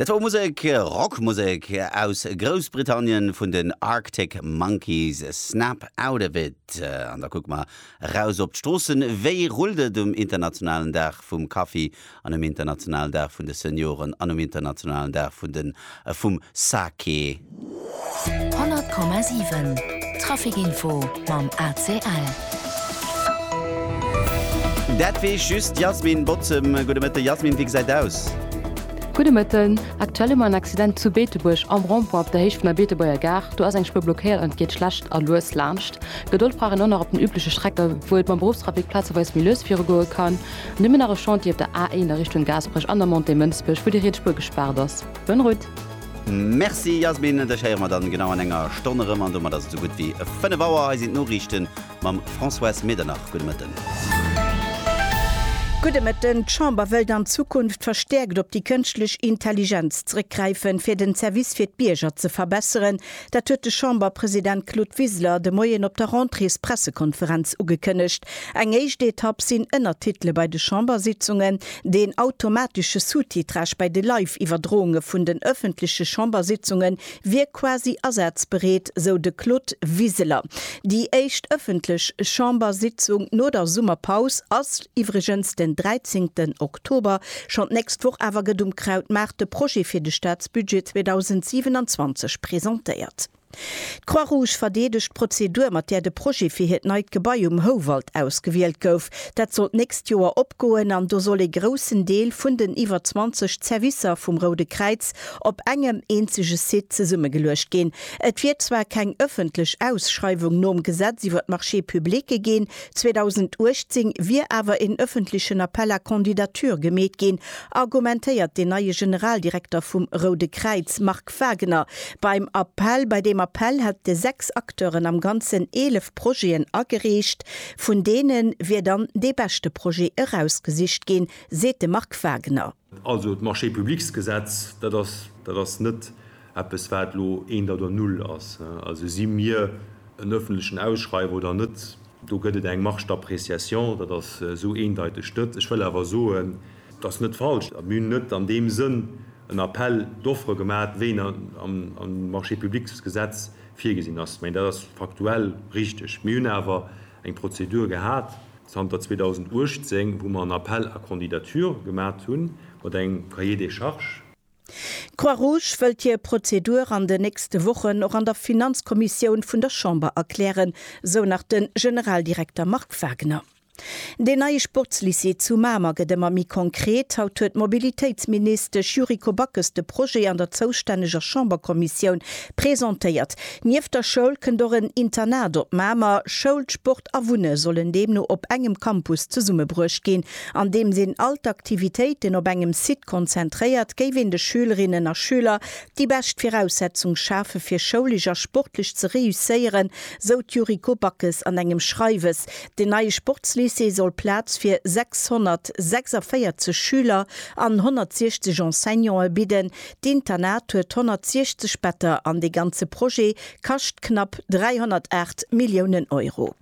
Dat wor Musek, Rockmusek aus Groussbritannien vun den Arctic Monkeys, Snap Out Of It. An da kucke mer raus op d'Stroossen. Wéi rullt et um internationalen Dag vum Kaffi an um internationalen Dag vun de Senioren an um internationalen Dag vun den a vum Sake. 100,7 Traficinfo mam ACL. Dat weess just d'Yasmin Bottem. Gudde Mëtten, Yasmin, wéi gesäit et aus? Gudde Mëtten, Aktuell hu mer en Accident zu Beetebuerg am Rond-point op der Héicht vun der Beetebuerger Gare. Do ass eng Spuer blockéiert an et geet schlecht a lues laanscht. Gedold brauch een och nach op den übleche Strecke wou et mam Beruffstrafic plazeweis méi lues virugoe kann. Nëmmen nach e Chantier op der A1 a Richtung Gaasperech an der Montée Mënsbech, wou déi riets Spuer gespaart ass. Bonne route! Merci Yasmin, dech héiere mer dann genau an enger Stonn erëm an domat ass et sou gutt wéi 5 Auer. Hei sinn d'Noriichten mam Françoise Medernach. Gudde Mëtten. Gudde Mëtten. D'Chamber wëllt an Zukunft verstäerkt op déi kënschtlech Intelligenz zrëckgräifen, fir den Service fir d'Bierger ze verbesseren. Dat huet de Chamberpresident Claude Wiseler de Moien op der Rentréespressekonferenz ugekënnegt. Eng éischt Etapp sinn Ënnertitele bei de Chambersitzungen, deen automatesche Sous-titrage bei de Live-Iwwerdrounge vun den ëffentleche Chambersitzunge wier quasi asazbereet, sou de Claude Wiseler. Déi éischt ëffentlech Chambersitzung no der Summerpaus ass iwwregens den 13. Oktober. Oktober, schonn d'nächst Woch awer gëtt um Krautmaart de Projet fir de Staatsbudget 2027 presentéiert. D'Croix Rouge verdeedegt d'Prozedur, mat där de Projet fir hiert neit Gebai um Houwald ausgewielt gouf. Dat soll d'nächst Joer opgoen an do soll ee groussen Deel vun den iwwer 20 Zerwisser vum Roude Kräiz op engem eenzege Site zesummegeluecht ginn. Et wier zwar keng ëffentlech Ausschreiwung nom Gesetz iwwer d'Marchés publique ginn, 2018 wier awer een ëffentlechen Appel à candidatures gemeet ginn, argumentéiert den neie Generaldirekter vum Roude Kräiz, Marc Wagener. Beim Appel, bei deem Appel hätte sechs Acteuren am Ganzen eelef Projeten agereecht. Vun deene wier dann dee beschte Projet erausgesicht ginn, seet de Marc Wagener. Also d'Marché-publics-Gesetz, dat ass, dat ass net eppes, wat elo eent oder null ass. Also si mir en öffentlechen Ausschreiwer oder net, do gëtt et eng Marge d'appréciation, dat ass esou eendeiteg net. Ech wëll awer soen, dat ass net falsch, mir hunn net an deem Sënn en Appel d'offres gemaat, wéi en am Marché-publics-Gesetz virgesinn ass. Mä dat ass faktuell richtig. Mir hunn awer eng Prozedur gehat, zanter 2018, wou mer en Appel à candidatures gemat hunn, mat engem Cahier des charges. D'Croix-Rouge wëllt hir Prozedur an den nächste Wochen och an der Finanzkommissioun vun der Chamber erklären, sou nach de Generaldirekter Marc Wagner. Deen neie Sportslycée zu Mamer gëtt ëmmer méi konkret. Haut huet d'Mobilitéitsministesch Yuriko Backes de Projet an der zoustänneger Chamberkommissioun Presentéiert. Nieft der Schoul kënnt och en Internat op Mamer. Schoul, Sport a Wunne sollen deemno op engem Campus zesummebruecht ginn. Andeems een all d'Aktivitéiten op engem Site konzentréiert, géif een de Schülerinnen a Schüler déi bescht Viraussetzung schafe fir schoulesch a sportlech ze reusséieren, sou d'Yuriko Backes an engem Schreiwes. Den neie Sportslycée soll Plaz fir 646 Schüler an 160 Enseignante bidden. D'Internat huet 160 Better an dee ganze Projet kascht knapp 308 Milliounen Euro.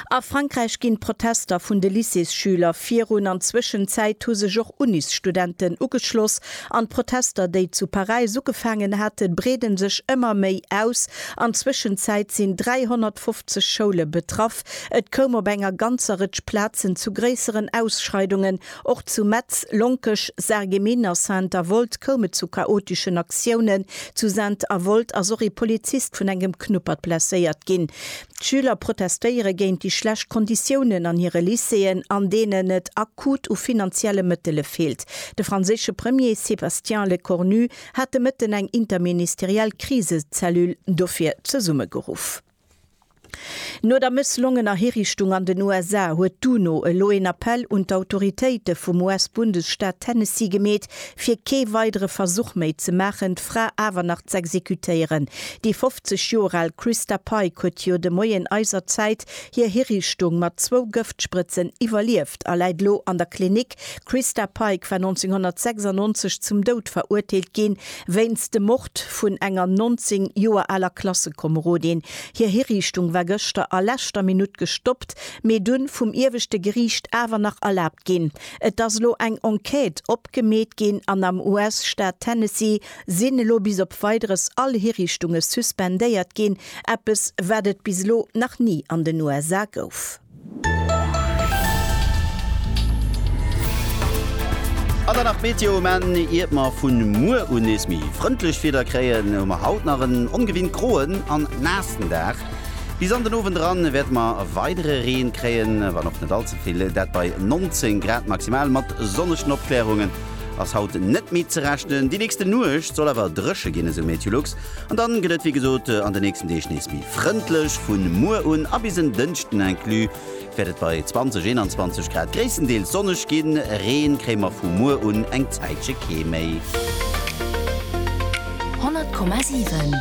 A Frankräich ginn d'Protester vun de Lycéesschüler virun. An Zwëschenzäit hu sech och Unisstudenten ugeschloss an d'Protester, déi zu Paräis ugefaangen haten, breede sech ëmmer méi aus. An Zwëschenzäit sinn 350 Schoule betraff. Et koum op enger ganzer Rëtsch Plazen zu gréisseren Ausschreidungen Och zu Metz, Lonkech, Sarreguemines a Saint-Avold koum et zu chaoteschen Aktiounen. Zu Saint-Avold ass och ee Polizist vun engem Knuppert blesséiert ginn. D'Schüler protestéiere géint déi schlecht Konditiounen an hire Lycéeën, an deenen et akut u finanzielle Mëttele feelt. De franséische Premier Sébastien Lecornu hat de Mëtten eng interministeriell Krisecellule dofir zesummegeruff. No der mësslongener Hirichtung an den USA huet d'UNO elo een Appell un d'Autoritéite vum US-Bundesstaat Tennessee gemeet, fir kee weidere Versuch méi ze maachen, d'Fra awer nach z'exekutéieren. Déi 50 Joer al Christa Pike huet jo de Moien eiser Zäit hir Hirichtung mat zwou Gëftsprëtzen iwwerlieft a läit elo an der Klinik. D'Christa Pike war 1996 zum Doud verurteelt ginn, Wéinst dem Mord vun enger 19 Joer aler Klassekomerodin. Hir Hiriichtung war gëschter a leschter Minutt gestoppt, mee dunn vum ieweschte Geriicht awer nach erlaabt ginn. Et ass elo eng Enquête opgemeet ginn an am US-Staat Tennessee sinn elo bis op Weideres all Hiriichtunge suspendéiert ginn, eppes wat et bis elo nach ni an den USA gouf. An dann nach d'Meteo um Enn. Iert mer vun muer un nees méi frëndlech Wieder kréien, hu mer haut nach en ongewinnt groen an naassen Dag. Bis an den Owend eran wäerte mer weidere Reen kréien, wann och net all ze vill. Dat bei 19 Grad maximal. Mat sonnegen Opklärungen ass haut net méi ze rechnen. Déi nächste Nuecht soll awer dréche ginn, esou Meteolux. An dann gëtt et wéi gesot an de nächsten Deeg nees méi frëndlech. Vun muer un a bis en Dënschden inclus wäert et bei 20, 21 Grad gréisstendeels sonneg ginn. Reen kréie mer vu muer un eng Zäitche kee méi. 100,7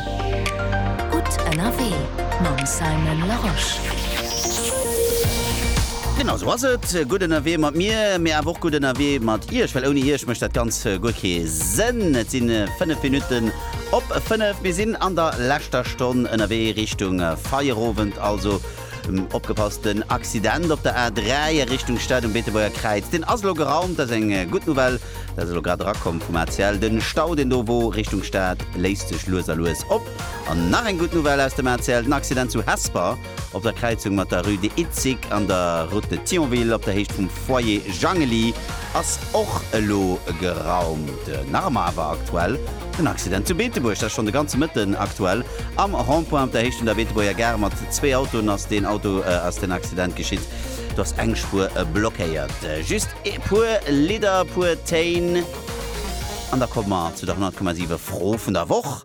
gutt ënnerwee mam Simon Larosche. Genau sou ass et, gutt ënnerwee mat mir, mee awer och gutt ënnerwee mat iech, well ouni iech mécht dat ganz guer kee Sënn. Et sinn 5 Minutten. Op 5, mir sinn an der leschter Stonn ënnerwee Richtung Feierowend, also opgepasst, den Accident op der A3 a Richtung Stad um Beetebuerger Kräiz, deen ass elo geraumt, dat ass eng gutt Nouvelle, dat ass elo grad erakomm vum ACL, de Stau, deen do wor Richtung Stad, léist sech lues a lues op. An nach eng gutt Nouvelle aus dem ACL, den Accident zu Hesper. Op der Kräizung mat der Rue de Itzig an der Route de Thionville op der Héicht vum Foyer Jangeli ass och elo geraumt. Nach ëmmer awer aktuell den Accident zu Beetebuerg. Dat schonn de ganze Mëtten aktuell. Am Rond-point op der Héicht vun der Beetebuerger Gare mat zwee Autoen ass deen Auto, ass den Accident geschitt. Do ass eng Spuer blockéiert. Just e puer Lidder, e puer Téin an da komme mer zu der 100,7 Fro vun der Woch.